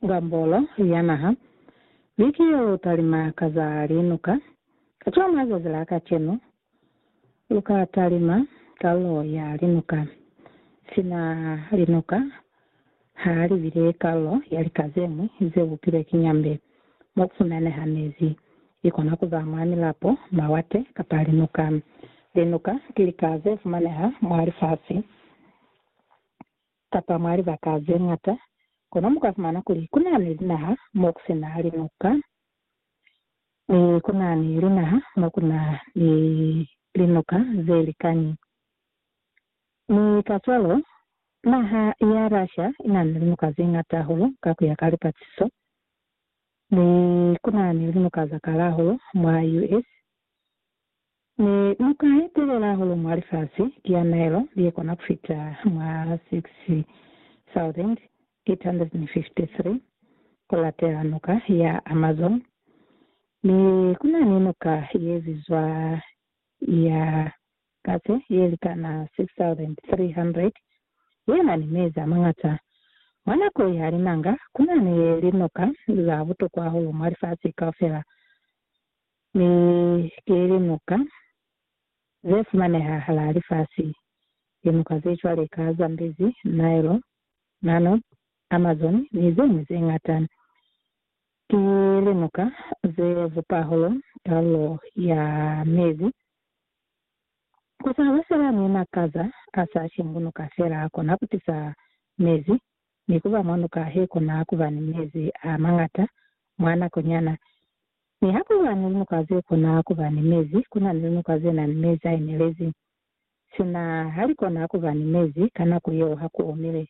Ngambolo ya naha, Biki yo lu talima ka za linuka. Kacwalo mazazi la kacenu, lu ka talima kalulo ya linuka. Sina linuka ha li bile kalulo ya lika ze ñwi ze bupilwe ki nyambe, mo ku fumaneha mezi. I kona ku ba mwa milapo, mawate, kapa linuka. Linuka ki lika ze fumaneha mwa lifasi. kapa mwa libaka ze ñata, kono mu ka fumana kuli ku na ni linaha mo ku si na linuka, mi ku na ni linaha mo ku na ni linuka ze likani. Mi kacwalo, naha ya Russia i na ni linuka ze ñata hahulu ka ku ya ka lipaciso, mi ku na ni linuka za kala hahulu mwa US. Mi lu ka etelela hahulu mwa lifasi, liamaelo li kona ku fita mwa 6,853 ku latela Nuka ya Amazon, mi ku na ni nuka ye bizwa ya Katse ye likana 6,300 ye na ni mezi a mañata. Mwa nako ya linanga, ku na ni linuka za butokwa hahulu mwa lifasi kaufela. Mi ki limuka ze fumaneha halaa lifasi, limuka ze cwale ka Zambezi, Nile, Nanoob, Amazon, ni ze ñwi ze ñata. Ki limuka ze bupa holo kalulo ya mezi. Ku sa ba fela ni makaza a sa shingunuka fela a kona ku tisa mezi, mi ku ba mwa nuka he kona ku ba ni mezi a mañata mwa nako nyana. Niha ku ba ni linuka ze kona ku ba ni mezi, ku na ni linuka ze na ni mezi a inelezi. Sina ha li kona ku ba ni mezi ka nako yeo ha ku omile.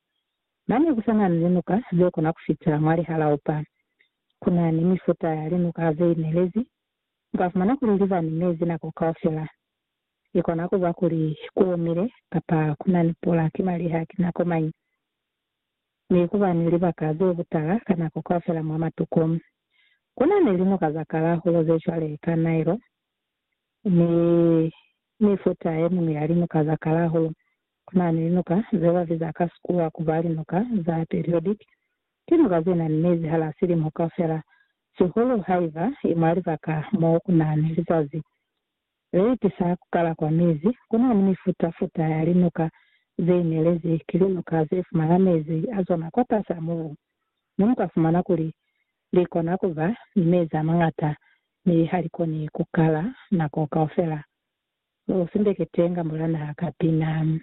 Mane ku sa na ni linuka ze kona ku fita mwa lihalaupa. Ku na ni mifuta ya linuka ze inelezi. U ka fumana kuli li ba ni mezi nako kaufela. I kona ku ba kuli ku omile kapa ku na ni pula ki maliha ki nako mañi. mi ku ba ni libaka ze butala ka nako kaufela mwa matuku. Ku na ni linoka za kalahulu ze cwale ka Nile ni mifuta ye miñwi ya linoka za kalahulu. Ku na ni linoka ze ba biza ka Sikuwa ku ba linoka za periodic, ki noka ze na ni mezi hala silimo kaufela, sihulu haiba i mwa libaka mo ku na ni lizazi Ze itisa ku kala kwa mezi. Ku na ni mifuta-futa ya linuka ze inelezi. Ki linuka ze fumana mezi a zona kwa fasi a mubu, mi mu ka fumana kuli li kona ku ba ni mezi a mañata mi ha li koni ku kala nako kaufela. Lu sindeketenge mbula naha ka pina.